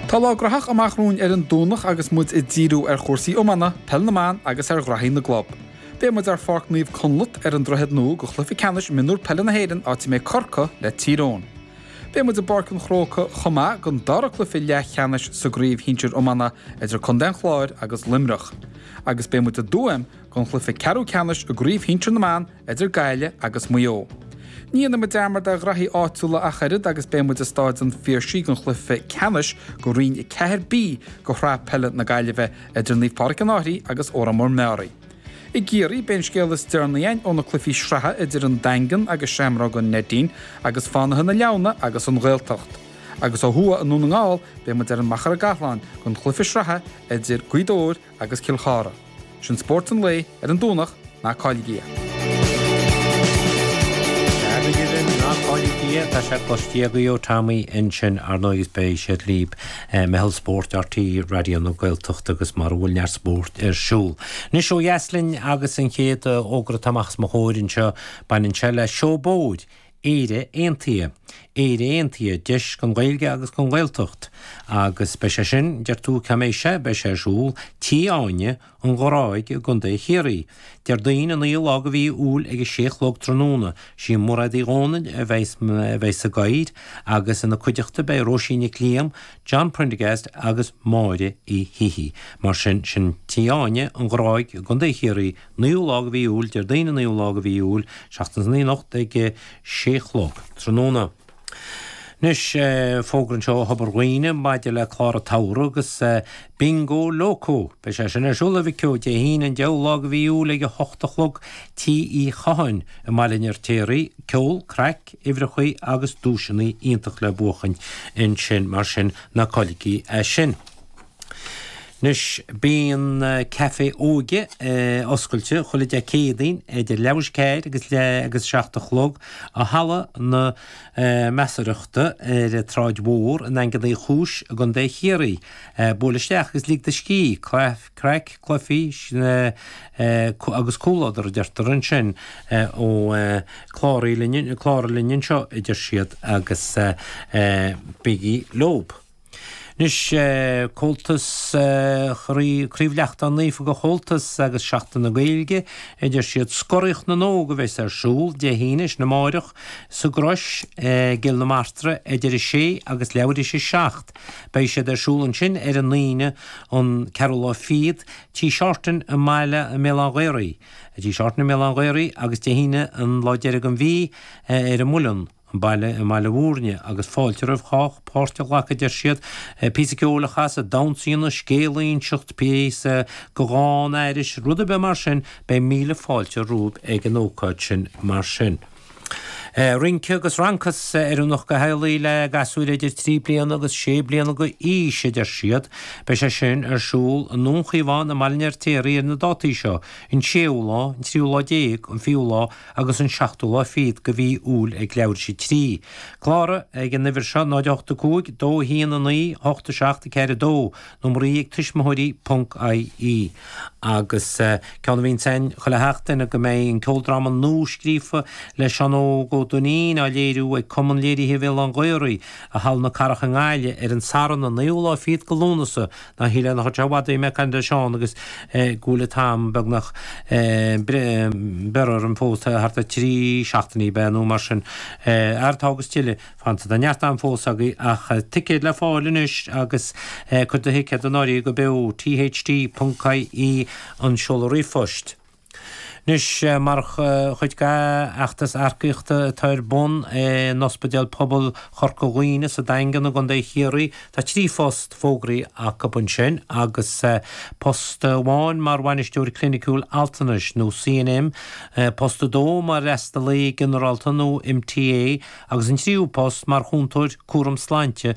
Tá lá graitheach amach romhainn ar an Domhnach agus muid ag díriú ar chúrsaí iomána, peil na mban agus ar ghraithí na gclub. Beidh muid ar Pháirc Naomh Conleth ar an Droichead Nua do chluiche ceannais Mionúr Peile na hÉireann áit a mbeidh Corcaigh le Tír Eoghain. Beidh muid i bPáirc an Chrócaigh chomh maith don dara cluiche leathcheannais sa gcraobh shinsir iomána idir Contae an Chláir agus Luimneach agus beidh muid i dTuaim don chluiche ceathrú ceannais i gcraobh shinsir na mban idir Gaillimh agus Maigh Eo. Ní dhéanfaimid dearmad ar ghraithí áitiúla ach oiread agus beidh muid i Stáid an Phiarsaigh don chluiche ceannais do Roinn 4B de Shraith Peile na Gaillimhe idir Naomh Pádraig an Fhairche agus Órán Mór-Meáraí. I gCiarraí, beidh an scéal is deireanaí againn ó na cluichí sraithe idir an Daingean agus Seamróga an Neidín agus Fánaithe na Leamhna agus An Ghaeltacht. Agus ó thuaidh i nDún na nGall, beidh muid ar an Machaire Gathlán don chluiche sraithe idir Gaoth Dobhair agus Cill Chartha. Sin spórt an lae ar an Domhnach, ná cailligí é. Deacair di linn ná cailligí é, tá sé cloiste agaibh ó Tommy ansin ar ndóigh is beidh siad libh. Meitheal Spóirt RTÉ Raidió na Gaeltachta agus mar a bhfuil neart spóirt ar siúl. Anois ó dheas linn agus an chéad fhógra atá amach as mo chomhair anseo, baineann sé le Seó Bóthair Éire Aontaithe, Éire Aontaithe, Deis don Ghaeilge agus don Ghaeltacht, agus beidh sé sin, deir tú, cá mbeidh sé, beidh sé ar siúl Tí Áine, An Ghráig, i gContae Chiarraí, Déardaoin an naoú lá de mhí Iúil ag a sé a chlog tráthnóna. Sí Mairéad Uí Dhónaill a bheidh a bheidh sa gcathaoir agus ina cuideachta beidh Róisín Nic Liam, John Prendergast agus Máire Uí Shíthigh. Mar sin, sin Tí Áine, An Ghráig, i gContae Chiarraí, Naoú lá de mhí Iúil, Déardaoin an naoú lá de mhí Iúil, seachtain san oíche anocht ag a sé a chlog tráthnóna. Anois, fógra anseo ó Thobar Dhuibhne maidir le clár an tsamhraidh agus Bingo Loco! Beidh sé sin ar siúl i Vic Eo Dé hAoine an deichiú lá de mhí Iúil ag a hocht a chlog Tí Uí Chatháin i mBaile an Fheirtéaraigh. Ceol, craic, uimhreacha agus duaiseanna iontach le buachan ansin, mar sin, ná cailligí é sin! Anois bíonn caife óige oscailte chuile Dé Céadaoin idir leathuair tar éis a ceathair agus leath agus seacht a chlog i Halla na Measarthachta ar an tSráid Mhór i nDaingean Uí Chúis i gContae Chiarraí. Buail isteach agus lig do scíth, craic, cluichí agus comhluadar a deirtear ansin ó cláraigh linn anseo a deir siad agus bígí leob. Anois, Comhaltas, Craobh Lachtaín Naofa de Chomhaltas agus Seachtain na Gaeilge a deir siad. Scoraíocht na nÓg a bheas ar siúl Dé hAoine, sin amárach, sa gCrois i gCill na Martra idir 6 agus leathuair tar éis a seacht. Beidh siad ar siúl ansin ar an Aoine an ceathrú lá fichead, Tigh Shorten i mBaile, i mBéal Átha an Ghaorthaidh, Tigh Shorten i mBéal Átha an Ghaorthaidh agus Dé hAoine an lá deiridh den mhí ar an Muileann. an baile i mBaile Mhúirne agus fáilte roimh chách páirt a ghlacadh, deir siad, píosa ceoil a chasadh, damhsa a dhéanamh, scéal a inseacht, píosa de dhán a aithris rud ar bith mar sin, beidh míle fáilte romhaibh ag an ócáid sin mar sin. Rince agus rancás, oiriúnach do theaghlaigh le gasúir idir trí bliana agus sé bliana d'aois, a deir siad. Beidh sé sin ar siúl i nDún Chíomháin i mBaile an Fheirtéaraigh ar na dátaí seo, an séú lá, an tríú lá déag, an fichiú lá, agus an seachtú lá fichead de mhí Iúil ag leathuair tar éis a trí. Cláraigh, ag an uimhir seo, 085 219 87 42, nó Marie ag tuismitheoirí ponc IE. Agus ceann amháin ansin chun a theacht duine go mbeidh an ceoldráma nuascríofa le Seán Óg Ó Duinnín á léiriú ag Cumann Léirithe Bhéal Átha an Ghaorthaidh i Halla na Cathrach i nGaillimh ar an Satharn an naoú lá fichead de Lúnasa Nach hí lena chuid seo i bhfad mé ag caint air sin agus go bhfuil an t-am beagnach beirthe orainn fós, thart ar thrí seachtainí ab ea nó mar sin. Ar tá agus tuilleadh fanta. Tá neart am fós agaibh ach ticéid le fáil anois agus cuir do thicéad in áirithe go beo, THT.ie, an seoladh ríomhphoist. Anois, mar chuid d'fheachtas earcaíochta atá ar bun i nOspidéal Pobail Chorca Dhuibhne sa Daingean i gContae Chiarraí, tá trí phost fógraithe acu ansin agus post amháin mar Bhainisteoir Cliniciúil Altranais nó CNM, post a dó mar Fhreastalaí Ginearálta nó MTA agus an tríú post mar Chúntóir Cúraim Sláinte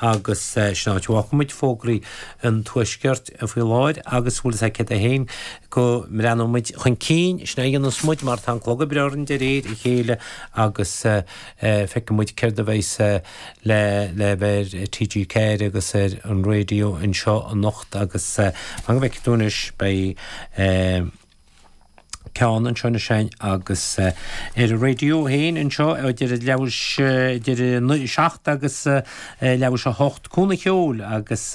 Agus sin an áit a bhfágfaidh muid fógraí an Tuaiscirt faoi láthair agus bhfuil fhios agat féin go mbreathnóidh muid chun cinn, sin a dhéanfas muid mar tá an clog ag breith orainn de réir a chéile agus feicfidh muid céard a bheas le léamh ar TG4 agus ar an raidió anseo anocht agus fan go bhfeicfidh tú anois beidh ceann anseo nó ansin agus ar an raidió féin anseo idir leathuair tar éis idir an 7 agus leathuair tar éis a 8 Cuan an Cheoil agus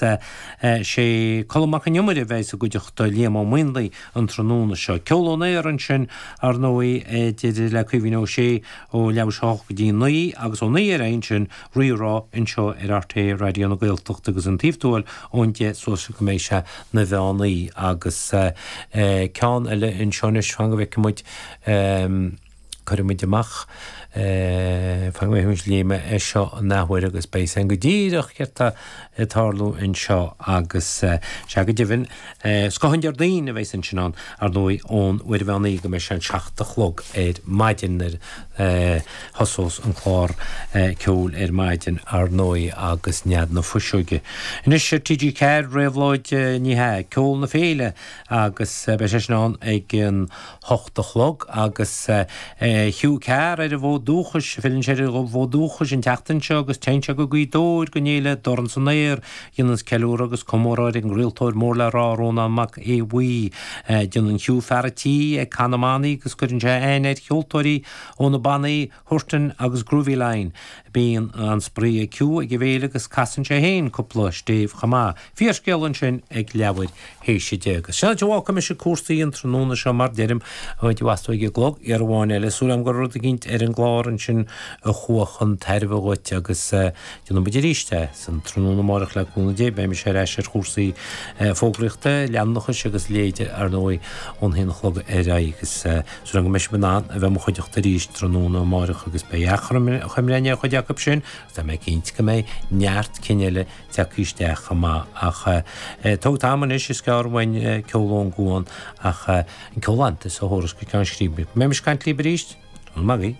sé Colm Mac Con Iomaire a bheidh i gcuideachta Liam Ó Maonlaí an tráthnóna seo. Ceol Aniar ansin ar ndóigh deireadh le Caoimhín Ó Sé ó leathuair tar éis a 8 go dtí 9 agus ó 9 ar aghaidh ansin Rírá anseo ar rté Raidió na Gaeltachta agus an taobh tuathail ón deich suas go mbeidh sé ina mheán oíche agus ceann eile anseo anois fan go bhfeice muid cuirfidh muid amach é fan go bhfeicfidh muid léigh mé é seo an athuair agus beidh sé go díreach céard tá ag tarlú anseo agus, sea, go deimhin, scoth an Déardaoin a bheas ansin ann, ar ndóigh, ón uair an mheán oíche go mbeidh sé an seacht a chlog ar maidin nuair a thosós an clár ceoil ar maidin, ar ndóigh, agus Nead na Fuiseoige. Anois ar TG4, Réabhlóid, ní hea, Ceol na Féile agus beidh sé sin ann ag an hocht a chlog agus Hugh Carr ar an bhfód dúchais. Filleann sé ar an bhfód dúchais an tseachtain seo agus téann sé go Gaoth Dobhair, don fhéile Dorn san Aer a dhéananns ceiliúradh agus comóradh ar an gcraoltóir mór le rá, Rónán Mac Aodha Bhuí. Déanann Hugh fear an tí ag Cath na mBannaí agus cuireann sé aithne ar cheoltóirí ó na bannaí, Huartan agus Grooveline. Bíonn an-spraoi ag Hugh ag an bhféile agus casann sé féin cúpla stéibh chomh maith. Fíorscéal ansin ag leathuair théis a deich. Agus sin an áit a bhfágfaidh mise cúrsaí an tráthnóna seo mar a deirim go dtí astu ag an gclog, uair amháin eile. Súil agam go raibh rud eicínt ar an gclár ansin a chuaigh chun tairbhe dhuit agus déanfaidh muid arís é san tráthnóna amárach le cúnamh Dé. Beidh mise ar ais ar chúrsaí fógraíochta, leanúnachais agus a leithéid ar ndóigh ón haon a chlog ar aghaidh agus. Súil agam go mbeidh sibh in ann a bheith i mo chuideachta arís tráthnóna amáireach agus beidh achoimre ar chuid acu sin agus tá mé cinnte go mbeidh neart cinn eile tagtha isteach chomh maith ach tóg t'am anois, is gearr uainn Ceol ón gCuan ach an ceol iontach seo a thabharfas go ceann scríbe. Go mbeidh mise ag caint libh arís tráthnóna amáireach.